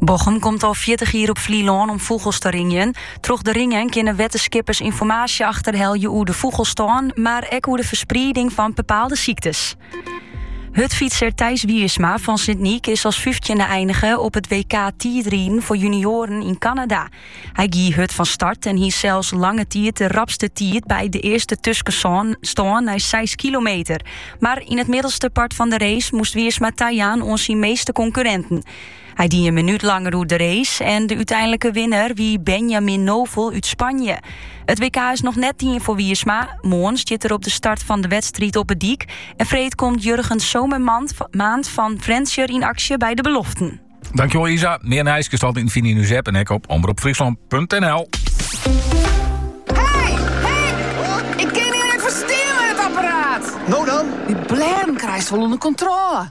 Bochum komt al 40 jier op Flylân om fûgels te ringjen. Troch de ringen kinne wittenskippers ynformaasje achterhelje oer de fûgelstân, mar ek oer de fersprieding fan bepaalde syktes. Hurdfytser Thijs Wiersma fan Sint Nyk is as 15e einige op it WK tiidriden foar junioaren yn Kanada. Hy gie hurd fan start en hie sels lange tiid de rapste tiid by de earste tuskenstân nei 6 kilometer. Mar yn it middelste part fan de race moast Wiersma tajaan oan syn measte konkurrinten. Hy die in minút langer oer de race en de úteinlike winner wie Benjamin Noval út Spanje. It WK is noch net dien foar Wiersma. Moarn stiet er op de start fan de wedstriid op de dyk. En freed komt Jurgen Zomermaand fan Frjentsjer yn aksje by de beloften. Dankjewel Isa. Mear nijs kinst altyd fine no en ek op omropfryslan.nl. Hey, hey, kin it hjir even stil mei it apparaat? Nou dan? Dy blêden krijst wol ûnder kontrôle.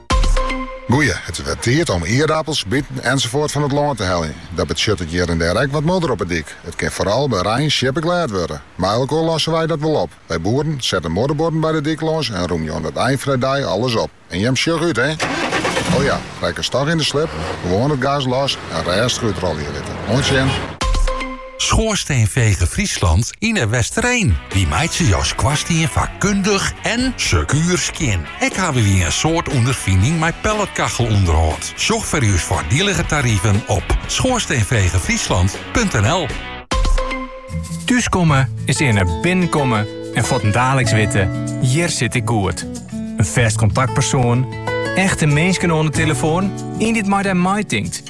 Goeie, it is wer tiid om ierdapels, biten ensafuort fan it lân te heljen. Dat betsjuttet hjir en dêr ek wat modder op 'e dyk. It kin foaral by rein sjippeglêd wurde. Mei elkoar losse wy dat wol op. Wy boeren sette modderbuorden by de dyk lâns en rûmje oan it ein fan 'e dei alles op. En jim sjoch út, hé! O ja, rekkest toch yn de slip, gewoan it gas los en rêstich útrolje litte. Oant sjen! Schoorsteenveger Friesland yn De Westereen. Wy meitsje jo skoarstien fakkundich en sekuer skjin. Ek hawwe wy in soad ûnderfining mei pelletkachelûnderhâld. Sjoch foar ús foardielige tariven op schoorsteenvegerfriesland.nl. Thúskomme is earne binnenkomme en fuortendaliks witte, hjir sit ik goed. In fêst kontaktpersoan, echte minsken oan de telefoan, ien dy't mei dy meitinkt.